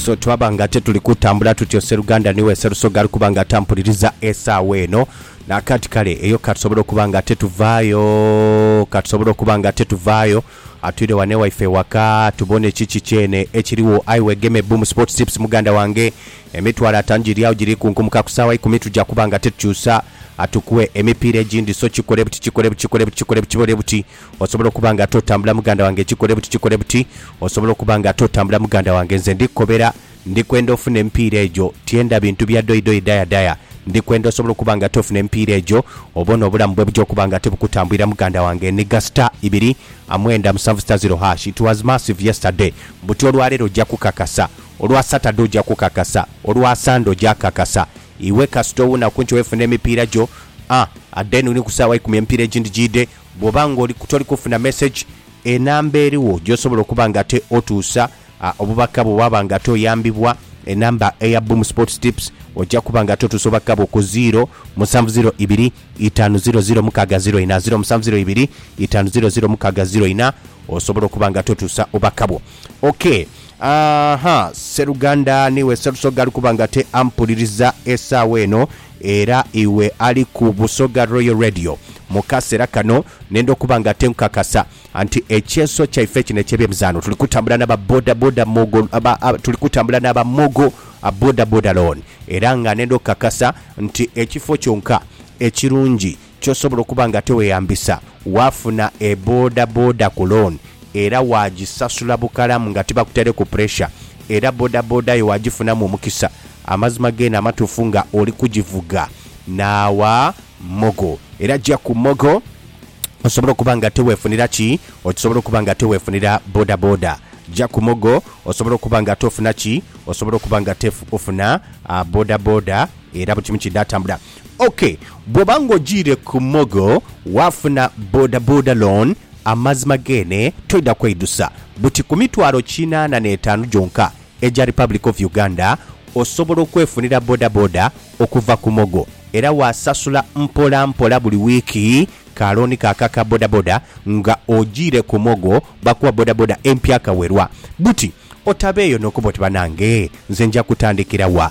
So twaba nga te tuli kutambula tutyo, sseruganda ni we Sserusoga ali kuba nga atampuliriza esaawa eno. Naakaati kale eyo ka tusobole okuba nga te tuvaayo, ka tusobole okuba nga te tuvaayo. Atwire wano ewaife ewaka tubone kiki kyene ekiriwo. Aye wegeme bbu mu Sports Tips muganda wange. Emitwalo ataanu giri agho giri kunkumuka ku saawa ikumi tuja kuba nga te tukyusa, atukuwe emipiira egindi. So kikole buti, kikole buti, kikole buti, kikole buti, kibole buti. Osobola okuba nga ate otambula muganda wange kikole buti kikole buti, osobola okuba nga ate otambula muganda wange nze ndi kukobera ndi kwenda ofuna emipiira egyo tyenda bintu bya doi doi daya daya ndi kwenda osobola okuba nga ate ofuna emipiira egyo obone obulamu bwebuja okuba nga ate bukutambwira muganda wange eniga star ibiri a mwenda musanvu star zero hash it was massive yesterday buti olwalero oja kukakasa olwa Saturday oja kukakasa olwa Sunday oja kakasa iwe kasita owunaku nti wefuna emipiira gyo a adeni ni ku saawa ikumi emipiira egindi gyide Bwoba nga oli toli kufuna message, enamba eriwo gyosobola okuba nga ate otuusa obubaka bwo waba nga ate oyambibwa, enamba eya Boom Sports Tips oja kuba nga ate otuusa obubaka bwo ku ziiro musanvu ziiro ibiri itaanu ziiro ziiro mukaaga ziiro ina, ziiro musanvu ziiro ibiri itaanu ziiro ziiro mukaaga ziiro ina osobole okuba nga ate otuusa obubaka bwo. Ok aahaa sseruganda niiwe Sserusoga ali kuba nga ate ampuliriza esaawa eno Era iwe ali ku Busoga Royal Radio mu kasera kano nenda okuba nga ate nkukakasa nti ekyeso kyaife kino ekye byemizaano tuli kutambula naba boda boda mogo tuli kutambula naba mogo boda boda loan era nga nenda okukakasa nti ekifo kyonka ekirungi Ky'osobola okuba nga tiweyambisa, Waafuna e boda boda ku loan era waagisasula bukalamu nga tibakutaireku puresha era boda boda yo waagifunamu omukisa. Amazima geene amatuufu nga oli kugivuga n'awa Mogo. Era gya ku Mogo osobole okuba nga tiweefunira ki? Osobola okuba nga tiweefunira boda boda. Gya ku Mogo osobole okuba nga tofuna ki? Osobola okuba nga tofuna boda boda era buli kimu kiidha atambula. Ok, bwoba nga ojiire ku mogo waafuna bodaboda loan, amazima geene toidha kweidusa. Buti ku mitwalo kinaana n'etaanu gyonka egya Republic of Uganda osobola okwefunira bodaboda okuva ku mogo era waasasula mpola mpola buli wiiki ka loan ka ka ka bodaboda nga ojiire ku mogo bakuwa bodaboda empya kawelwa. Buti otabeeyo n'okuba oti banange nze nja kutandikira wa?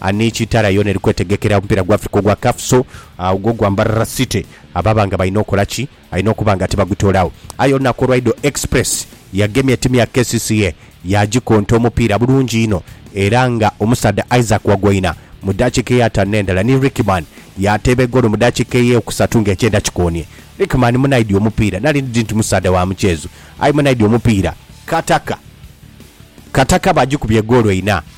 Ani ki taala yoona eri kwetegekera omupiira gwa Africa ogwa CAF so ogwo gwa Mbarara City ababa nga balina okola ki? Alina okuba nga tibagutoolawo. Aye olunaku olwaidho Express yagemye timu ya kcca yaagikonta omupiira bulungi inho era nga omusaadha Isaac Wagoina mu dakiika eyataanu n'endala ni Rickman yaateeba egoolo mu dakiika eyeekusatu nga ekyenda kikoonie. Rickman munaidhi omupiira nali ndi nti musaadha wa mukyeezo aye munaidhi omupiira. Kataka Kataka baagikubye egoolo ina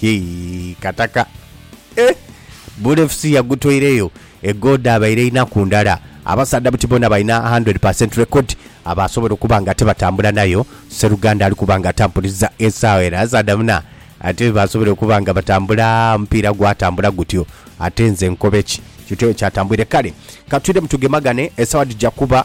Hii kataka eh. Bula FC yagutoireyo e goal dhabaire inaku ndala. Abasaadha buti bona balina 100 per cent record abasobola okuba nga tibatambula nayo. Sseruganda ali kuba nga atampuliza esaawa eno abasaadha bona ate basobola okuba nga batambula omupiira gwatambula gutyo ate nze nkobe ki? Kityo bwe kyatambwire. Kale katwiremu tugemagane esaawa dhija kuba